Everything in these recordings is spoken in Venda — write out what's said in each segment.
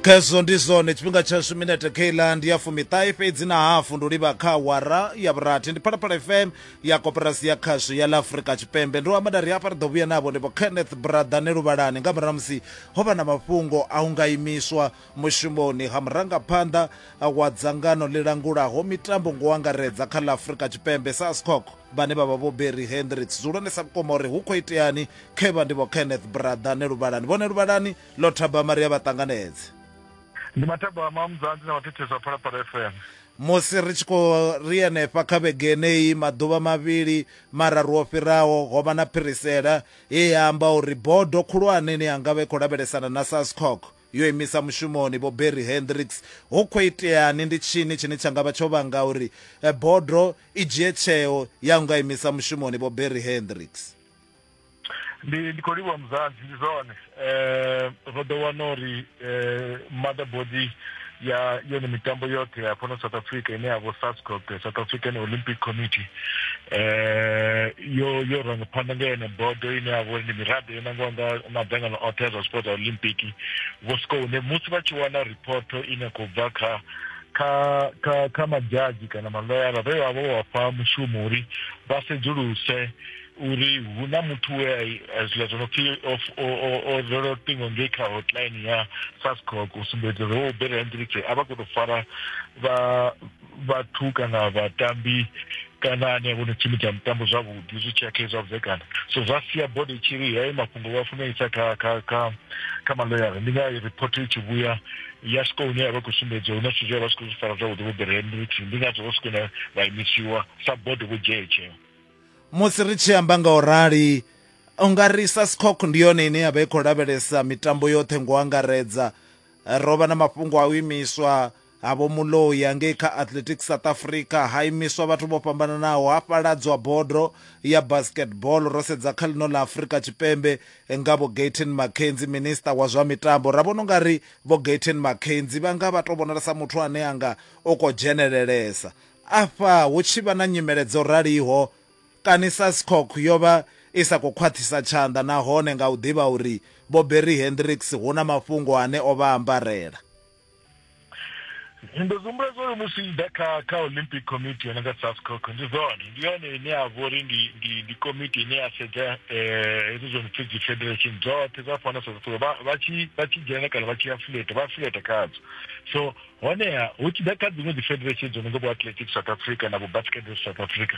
khezwo ndi zwone tshifhinga tshashu minete keiland ndi ya fumiṱahe fhedzi na hafu ndo livha kha awara ya vhurathi ndi phalaphala fm ya koporasi ya khasho ya ḽa afurika tshipembe ndo amada ri hafha ri ḓo vhuya navho ndivho kenneth brathane luvhalani nga murahu musi ho vha na mafhungo a u nga imiswa mushumoni ha murangaphanḓa wa dzangano ḽi langulaho mitambo ngo angaredza kha ḽa afurika tshipembe sascoc vhane vha vha vho berry hendricks zwi hulwanesa vhukuma uri hu khou iteani khe vha ndi vho kenneth brother ne luvhalani vhone luvhalani lo thaba maria vha ṱanganedze ndi mathabama mudzanzi na vhathetheswa phalaphala fm musi ri tshi khou ri henefha kha vhege yeneyi maḓuvha mavhili mararu o fhiraho ho vha na phirisela ye ya amba uri bodo khulwane ni yanga vha i khou lavhelesana na sascock yo imisa mushumoni Vho Barry Hendricks, hu khou iteani, ndi tshini tshine tsha nga vha tsho vhanga uri bodo i dzhie tsheo ya nga imisa mushumoni Vho Barry Hendricks? ndi ndi khou livhuwa muzanzi ndi zwone um ro ḓo wana uri um mother body ya yone mitambo yoṱhe ya fhano south africa ine ya vho sascop the south african olympic committee eh yo yo ranga phanḓa nga yone bodo ine ya vhori ndi miraḓo yo nangiwa nga madzangano oṱhe ya zwa sports olympic vho swika hune musi vha tshi wana riphoto ine khou bva kha kha kha kha madzhadzhi kana maloyara vhe vha vho vha fha mushumo uri vha sedzuluse uri hu na muthu we a zwiḽa zwo no pfi o rwela luṱingo ngei kha hotline ya sascoc u sumbedza uri o belela ndiripfe a vha khou tou fara vhathu kana vhatambi kana ane a vho no tshimbidza mutambo zwavhuḓi zwi tshi ya kha zwa vhudzekana so zwa sia bodo i tshi ri heyo mafhungo vha funa isa kha kha kha kha maloyara ndi nga report i tshi vhuya ya swika hune ya vha khou sumbedza huna zwithu zwe vha swika zwi fara zwavhuḓi vho belela ndiripfe ndi ngazwo vho swika vha imisiwa sa bodo vho dzhia tsheo musi ri tshi amba nga u rali u nga ri sascoc ndi yone ine ya vha i khou lavhelesa mitambo yoṱhe ngo angaredza ro vha na mafhungo a u imiswa ha vho muloya ngei kha athletic south africa ha imiswa vhathu vho fhambananaho ha fhaladzwa bodo ya basketball ro sedza kha ḽino ḽa afrika tshipembe nga vho gaten mackenzi minista wa zwa mitambo ra vhona unga ri vho gaten mackenzi vha nga vha to vhonala sa muthu ane anga o ko dzhenelelesa Afha hu tshi vha na nyimele dzo raliho, kani SASCOC yo vha i sa khou khwaṱhisa tshanḓa nahone nga u ḓivha uri Vho Barry Hendricks hu na mafhungo ane o vha ambarela? Nyimbo dzo humbuledzwa uri musi zwi tshi ḓa kha kha Olympic Committee yo no nga SASCOC ndi dzone, ndi yone ine ya vha uri ndi ndi ndi komiti ine ya sedza hezwi zwo no pfhi dzi federation dzoṱhe dza fhano South Africa vha vha tshi vha tshi dzhena kana vha tshi afiḽeta vha afiḽeta khadzo. So Honeha, hu tshi ḓa kha dziṅwe dzifederesheni dzo no nga vho-Athletics South Africa na vho-Basketball South Africa,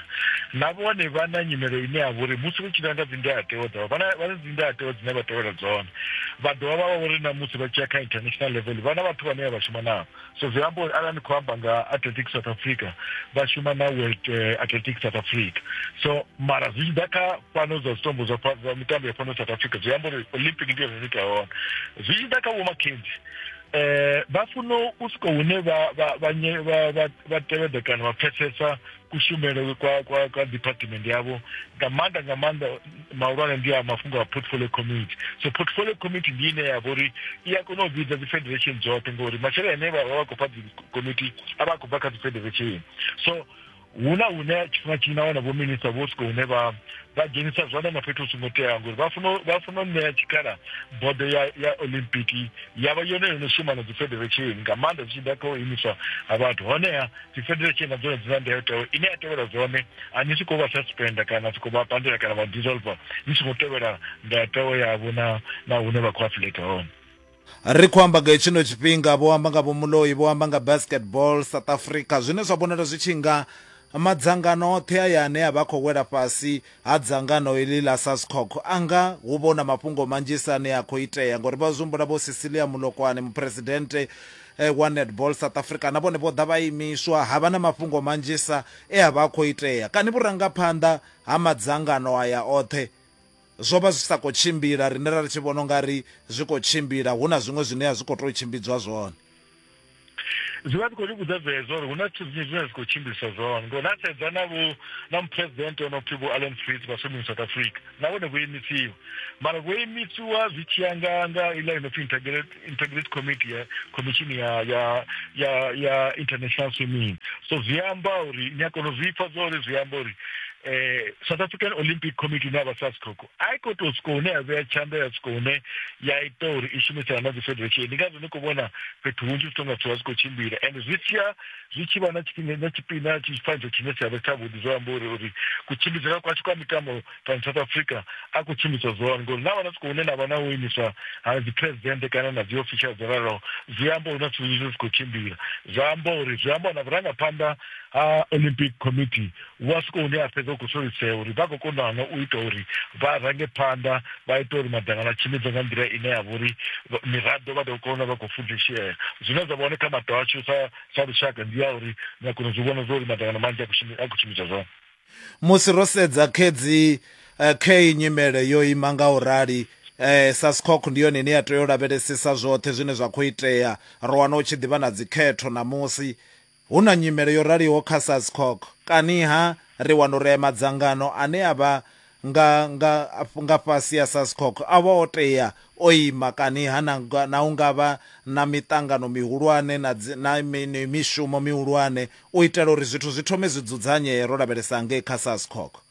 na vhone vha na nyimelo ine ya vha uri musi vha tshi nanga dzindayatewa dzavho, vha na dzindayatewa dzine vha tevhela dzone. Vha dovha vha vha uri na musi vha tshi ya kha international level, vha na vhathu vhane vha vha shuma navho. So zwi amba uri arali ni khou amba nga Athletics South Africa, vha shuma na World eh, Athletics South Africa. So mara zwi tshi ḓa kha fhano dza zwitombo zwa mitambo ya fhano South Africa, zwi amba uri Olympic ndi yone ine ita hone. Zwi tshi ḓa kha vho-McKenzie, eh vha funa u swika hune vha vha vha vha vha tevhedza kana vha pfesesa kushumele kwa kwa kwa department yavho nga maanḓa nga maanḓa mahulwane ndi a mafhungo a portfolio committee so portfolio committee ndi ine ya vhori i a kona u vhidza dzi federation dzoṱhe ngori masheleni ane vha vha vha khou fha dzi committee a vha a khou bva kha dzi federation so hu na hune tshifhinga tshinzhi na wana vhominista vho swika hune vha vha dzhenisa zwanḓa na fhethu hu songo teaho ngori vha funa vha funa u ṋea tshikhala bodo ya ya olympic ya vha yone yo no shuma na dzi federation nga maanḓa zwi tshi ḓa kha u imiswa ha vhathu honeha dzi federation na dzone dzi na ndayotewa ine ya tevhela zwone a ni soko vha suspenda kana soko vha pandela kana vha dissolver ni songo tevhela ndayotewa yavho na na hune vha khou afileka hone Ri khou amba nga hetshino tshifhinga, vho amba nga vhomuloi, vho amba nga basketball South Africa, zwine zwa vhonala zwi tshi nga madzangano oṱhe aya ane a vha khou wela fhasi ha dzangano iḽi ḽa SASCOC a nga hu vha hu na mafhungo manzhisa ane a khou itea, ngauri vha zwi humbula vho Cecilia Molokwane, muphuresidennde eh, wa Netball South Africa, na vhone vho ḓa vha imiswa, ha vha na mafhungo manzhisa e a vha a khou itea. Kani vhurangaphanḓa ha madzangano aya oṱhe zwo vha zwi sa khou tshimbila rine ra ri tshi vhona ungari zwi khou tshimbila hu na zwiṅwe zwine a zwi khou tou tshimbidzwa zwone zwi vha zwi khou ri vhudza zwezwo uri hu na zwithu zwinzhi zwine zwi khou tshimbiliswa zwone ngori na sedza na vho na muphuresidente o no pfhi vho allen fritz vha sumini south africa na vhone vho imisiwa mara vho imisiwa zwi tshiya nga nga iḽa i no pfhi integrity committee ya khomishini ya ya ya ya international swimming so zwi amba uri ni a kona u zwi pfa zwa uri zwi amba uri eh south african olympic committee ine ya vha sascoco a i khou tou swika hune ya vhea tshanḓa ya swika hune ya ita uri i shumisana na dzi federation ndi ngazwo ni khou vhona fhethu hunzhi zwi tonga zwithu zwa zwi khou tshimbila and zwi tshiya zwi tshi vha na tshifhinga na tshifhinga tshifaniso tshine tsha vha tshavhuḓi zwo amba uri uri kutshimbidzele kwashu kwa mitambo fhano south africa a khou tshimbidzwa zwone ngori na vhana siko hune na vha na u imiswa ha dzi presidente kana na dzi official dzo raloho zwi amba uri na zwithu zwinzhi zwi si khou tshimbila zwi amba uri zwi amba na vhurangaphanḓa ha olympic committee wa siko hune a fhedza u khou solisea uri vha khou konana u ita uri vha range phanḓa vha ita uri madzangano a tshimbidzwa nga nḓila ine ya vha uri miraḓo vha ḓo kona vha khou fudzishea zwine zwa vha hone kha mato ashu sa sa lushaka ndi ya uri ni a kona zwi vhona zwa uri madzangano manzhi a khou tshimbidzwa zwone musi ro sedza khedzi eh, khe nyimele yo ima nga u rali eh sa scock ndi yone ine ya tea u lavhelesesa zwoṱhe zwine zwa khou itea ro wana u tshi ḓivha na dzikhetho na musi hu na nyimele yo raliho kha sa scock kaniha ri wana uri madzangano ane a vha nga nga nga fhasi ya SASCOC a vha o tea o ima kani ha na, na u nga vha na miṱangano mihulwane na, na mishumo mihulwane u itela uri zwithu zwi thome zwi dzudzanyee ro lavhelesa ngei kha SASCOC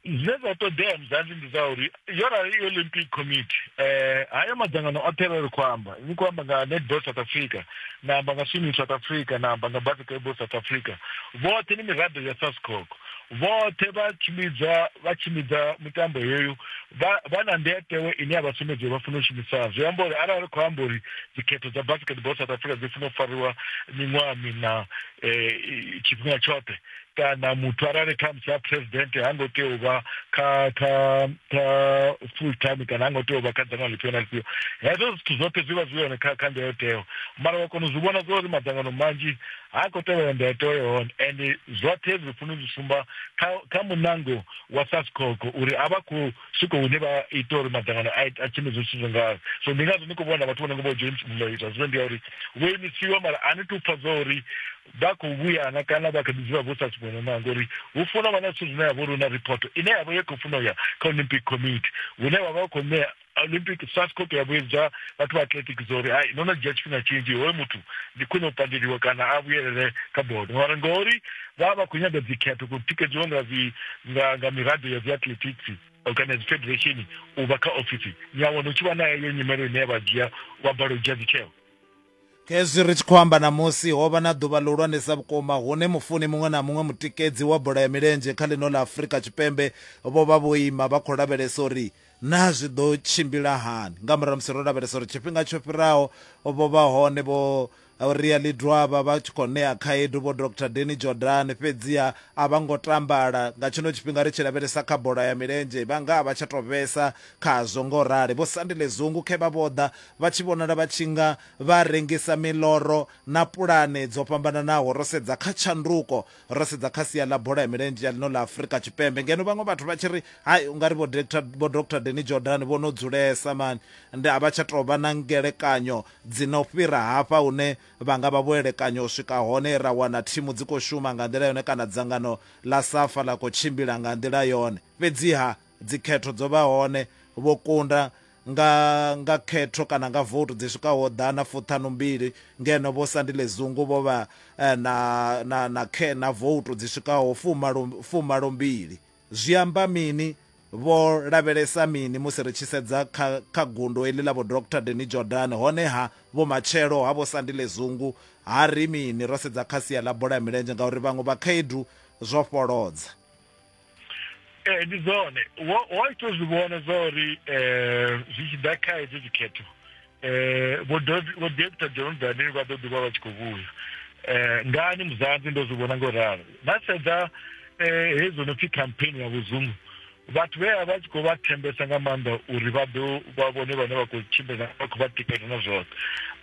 zwine zwa ṱoḓea muzanzi ndi zwa uri yo rali i olympic committee eh haya madzangano oṱhe vha ri khou amba ni khou amba nga netball south africa na amba nga swimming south africa na amba nga basketball south africa vhoṱhe ni miraḓo ya sascoc vhoṱhe vha tshimbidza vha tshimbidza mitambo heyo vha na ndetewe ine ya vha sumbedza uri vha funa u shumisana zwi amba uri arali ri khou amba uri dzikhetho dza basketball south africa dzi funa u fariwa miṅwaha mina um tshifhinga tshoṱhe kana muthu arali khamusi a president ha ngo tea u vha kha kha kha full time kana ha ngo tea u vha kha dzangano lifhio na lifhio hezwo zwithu zwoṱhe zwi vha zwi hone kha kha ndayotewa mara wa kona u zwi vhona zwa uri madzangano manzhi ha khou tevhela ndayotewa ya hone and zwoṱhe zwi funa zwi sumba kha kha munango wa sascoco uri a vha khou swika hune vha ita uri madzangano a tshimbidze zwithu zwo ngazwo so ndi ngazwo ni khou vhona vhathu vho no ngo vho dzhoinisiwa zwiwe ndi ya uri vho imisiwa mara a ni tu pfa zwa uri vha khou vhuyana kana vha kha ḓi dzula vho sa suṅwe na ṋanga uri hu funa vha na zwithu zwine ya vha uri hu na riphoto ine ya vha ye khou funa u ya kha olympic committee hune vha vha vha khou ṋea olympic sascop ya vhuyedza vhathu vha atletic zwa uri ai no no dzhia tshifhinga tshinzhi hoyo muthu ndi khwine u pandeliwa kana a vhuyelele kha bodo mara ngori vha vha khou nyaga dzikhetho khou tikedziwa nga nga miraḓo ya dzi athletics kana dzi federation u vha kha ofisi ni a wana u tshi vha na heyo nyimelo ine ya vha dzhia vha bala u dzhia dzitsheo Khezwi ri tshi khou amba ṋamusi, ho vha na ḓuvha ḽihulwanesa vhukuma hune mufuni muṅwe na muṅwe mutikedzi wa bola ya milenzhe kha ḽino ḽa Afrika Tshipembe vho vha vho ima vha khou lavhelesa uri naa zwi ḓo tshimbila hani. Nga murahu ha musi ro lavhelesa uri tshifhinga tsho fhiraho vho vha hone vho Ria Lidwaba vha tshi khou ṋea khaedu vho Doctor Danny Jordaan, fhedziha a vha ngo tambala. Nga tshino tshifhinga ri tshi lavhelesa kha bola ya milenzhe, vha nga a vha tsha tou vhesa khazwo nga u rali. Vho Sandile Zungu khe vha vho ḓa Vha tshi vhonala vha tshi nga vha rengisa miḽoro na pulane dzo fhambananaho. Ro sedza kha tshanduko, ro sedza kha sia ḽa bola ya milenzhe ya ḽino ḽa Afrika Tshipembe ngeno vhaṅwe vhathu vha tshi ri, Hai, u nga ri vho Doctor, vho Doctor Danny Jordaan vho no dzulesa mani, ndi a vha tsha tou vha na ngelekanyo dzi no fhira hafha hune vha nga vha vho elekanya u swika hone, ra wana thimu dzi khou shuma nga nḓila yone kana dzangano ḽa Safa ḽa khou tshimbila nga nḓila yone. Fhedziha. Dzikhetho dzo vha hone, vho kunda nga nga khetho kana nga vote dzi swikaho ḓana fuṱhanu mbili ngeno vho Sandile Zungu vho vha eh, na na na khe na vote dzi swikaho fumalo fumalo mbili zwi amba mini vho lavhelesa mini musi ri tshi sedza kha kha gundo eḽi ḽa vho Dr Deni Jordan hone ha vho matshelo ha vho Sandile Zungu ha ri mini ro sedza kha sia ḽa bola ya milenzhe ngauri vhaṅwe vha khaedu zwo fholodza ee ndi dzone wa ita zwi vhona zwa uri um zwi tshi ḓa kha hedzo dzikhetho um vho dokta john daniel vha ḓo ḓivha vha tshi khou vhuya um ngani muzanzi ndo zwi vhona ngo ralo na sedza um hedzo no pfhi campaign ya vhuzungu vhathu vhe a vha tshi khou vha thembesa nga maanḓa uri vha ḓo vha vhone vhane vha khou tshimbila vha khou vha tikela na zwoṱhe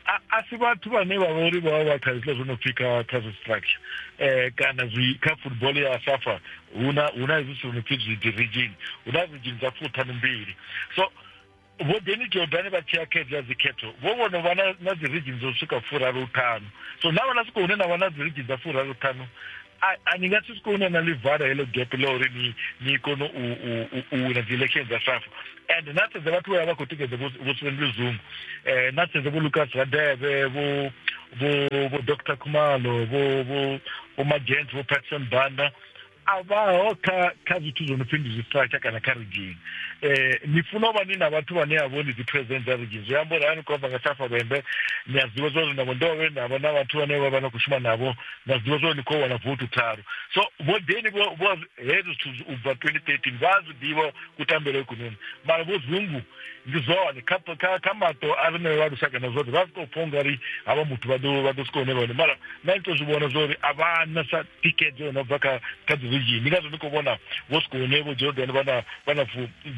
a si vhathu vhane vha vha uri vha vha kha zwiḽa zwo no pfhi kha kha zwi structure eh, kana zwi kha football ya safa huna huna hezwi zwithu no pfi zwi division huna division dza fuṱhanu mbili so vho deni jordani vha tshiya khedzi ya dzikhetho vho vhono vha na dzi region dzo swika furaru ṱhanu so na vhana swika hune na vha na dzi region dza furaru ṱhanu a ni nga si swika hune na livara heḽo gap ḽa uri ni ni kone u wina dzi election dza safa and na sedze vhathu vha vha khou tikedza vho sivendile zungu um na sedze vho lucas radeve vho vho vho dr khumalo vho vho vho magents vho patson banda a vhaho kha kha zwithu zwo no pfhi ndi zwistratsha kana kha ridzhini um eh, ni funa u vha ni na vhathu vhane a vho ni dzi president dza ridzhini zwi amba uri a ni khou amba nga safa lwembe ni a zwiḓivha zwa uri navho ndo vhe na vha na vhathu vhane vha vha na khou shuma navho na zwiḓivha zwa uri ni khou wana votu tharu so vho deni vho hezwo zwithu u bva twenty thirteen vha a zwi ḓivha kutambele kunoni mara vho zungu ndi zwone kha kha kha maṱo a rine vha lushaka na zwoṱhe vha si tou pfha ungari havha muthu vha ḓo vha ḓo swika hune vhone mara na ito zwi vhona zwori a vha na sa thikedzo no bva kha kha dzi region ndi ngazwo ndi khou vhona vho swika hune vho jordan vha na vha na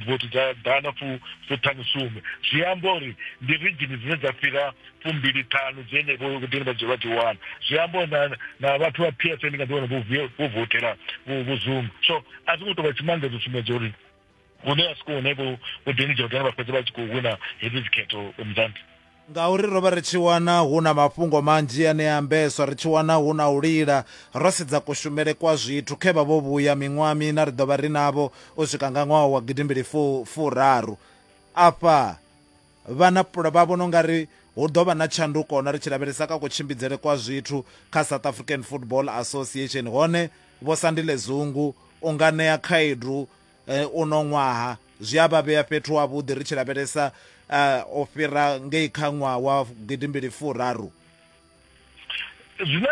vothi dza ḓana fu fu ṱhanu sumbe zwi amba uri ndi region dzine dza fhira fumbili ṱhanu dzine vho dini vha dzi vha dzi wana zwi amba uri na na vhathu vha psa ndi nga ḓi wana vho votela vho vho zuma so a zwi ngo tou vha tshimangedzo tsumbedzo uri hune vha swika hune vho vho ḓilidza uri vha fhedze vha tshi khou wina hedzi dzikhetho muzanḓa ngauri ro vha ri tshi wana hu na mafhungo manzhi ane a ambeswa ri tshi wana hu na u lila ro sedza kushumele kwa zwithu khe vha vho vhuya miṅwaha mina ri ḓo vha ri navho u swika nga ṅwaha wa gidimbili fu furaru afha Vhana vha vhona ungari hu ḓo vha na tshanduko na ri tshi lavhelesa kha kutshimbidzele kwa zwithu kha South African Football Association hone Vho Sandile Zungu u nga ṋea khaedu eh, uno ṅwaha zwi a vha vhea fhethu havhuḓi ri tshi lavhelesa eh, u fhira ngei kha ṅwaha wa gidimbili furaru. zwine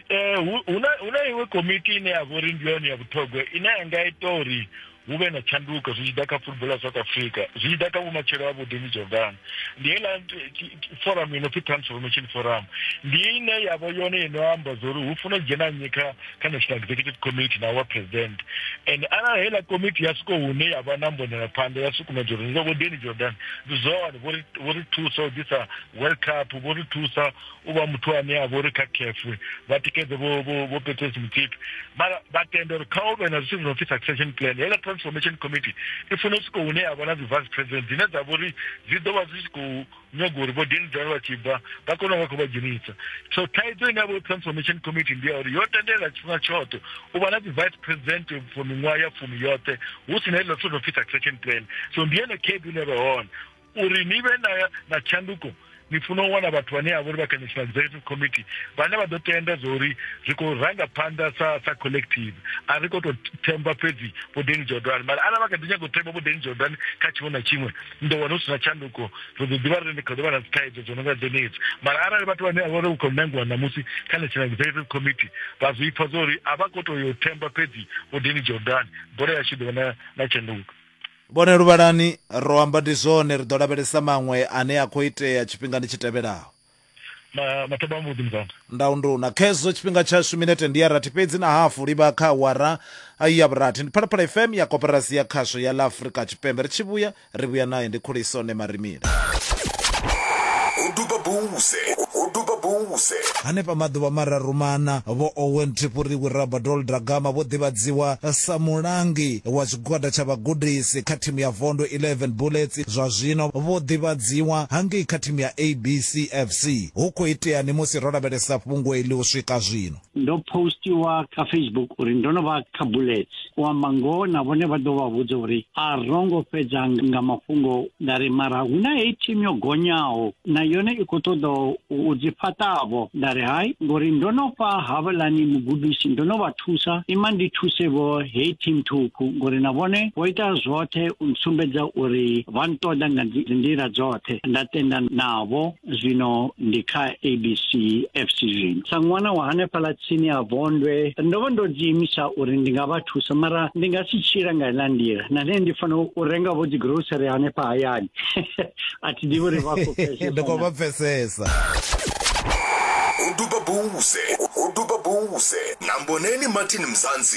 eh, hu na iṅwe komiti ine ya vha uri ndi yone ya vhuṱhogwa ine ya nga ita uri hu vhe na tshanduko zwi tshi ḓa kha football ya south africa zwi tshi ḓa kha vhumatshelo ha vhudini jordan ndi heiḽa forum ino pfi transformation forum ndi ine yavho yone ino amba zwa uri hu funa u dzhena nnyi kha kha national executive committee na wa president and arali heiḽa komiti ya swiko hune ya vha na mbonela phanḓa ya sukumedza uri zwa vhudini jordan ndi zwone vho ri thusa u ḓisa World Cup vho ri thusa u vha muthu ane a vha uri kha caf vha tikedze vho petresi mutsipi mara vha tenda uri kha u vhe na zwithu zwi no pfi succession plan heiḽa transformation committee i funa u swika hune ya vha na dzi vice president dzine dza vha uri dzi ḓo vha zwi tshi khou nyaga uri vho denidal vha tshi bva vha kone u vha khou vha dzhenisa so thaidzo ine ya vha transformation committee ndi ya uri yo tendelela tshifhinga tshoṱhe u vha na dzi vice president for miṅwaha ya fumi yoṱhe hu si na heiḽa zwithu zwi no pfi succession plan so ndi yone khaedu ine vha hone uri ni vhe na, na tshanduko ni funa u wana vhathu vhane a vha uri vha kha national executive committee vhane vha ḓo tenda zwa uri ri khou ranga phanḓa sa sa collective a ri khou tou themba fhedzi vho deni jordan mara arali vha kha ḓi nyaga u themba vho deni jordan kha tshiṅwe na tshiṅwe ni ḓo wana hu si na tshanduko ri ḓo ḓivha ri ndi kha ḓo vha na dzithaidzo dzo no nga dzenedzi mara arali vhathu vhane a vha uri u khou nangiwa ṋamusi kha national executive committee vha zwi pfa zwa uri a vha khou tou yo themba fhedzi vho deni jordan bola yashu ḓo vha na tshanduko Vhone luvhalani, ro amba ndi zwone, ri ḓo lavhelesa maṅwe ane a khou itea tshifhingani tshi tevhelaho. Matombo a mbuḓi muzwanda. Ndaunduna, Khezwo tshifhinga tshashu minete ndi ya rathi fhedzi na hafu, livha kha awara ya vhurathi. Ndi Phalaphala FM ya Koporasi ya Khasho ya ḽa Afrika Tshipembe, ri tshi vhuya, ri vhuya nae, ndi Khuliso Nemarimi. hanefha maḓuvha mararu mana vho owen tripuriwi rabadol dragama vho ḓivhadziwa sa mulangi wa tshigwada tsha vhagudisi kha thimu ya vondo 11 bullets zwa zwino vho ḓivhadziwa hangei kha thimu ya abc fc hu khou iteani musi ro lavhelesa fhungo eli u swika zwino ndo postiwa kha facebook uri ndo no vha kha bullets u amba ngoho na vhone vha ḓo vha vhudza uri a ro ngo fhedza nga mafhungo nda ri mara hu na heyi thimu yo gonyaho na yone i khou ṱoḓa u dzi fhaṱavho nda ri hai ngori ndo no fha havhalani mugudisi ndo no vha thusa ima ndi thuse vho heyi thimu thukhu ngori na vhone vho ita zwoṱhe u sumbedza uri vha nṱoḓa nga nḓila dzoṱhe nda tenda navho zwino ndi kha abc fc zwino sa ṅwana wa hanefhaḽa tsini ha vondwe ndo vha ndo dziimisa uri ndi nga vha thusa mara ndi nga si tshila nga iḽa nḓila na nṋe ndi fanela u renga vho dzigrocery hanefha hayani a thi ḓivhi uri vha khou pfesesa ndi khou vha pfesesa uduba buze uduba buze na mboneni martin mzansi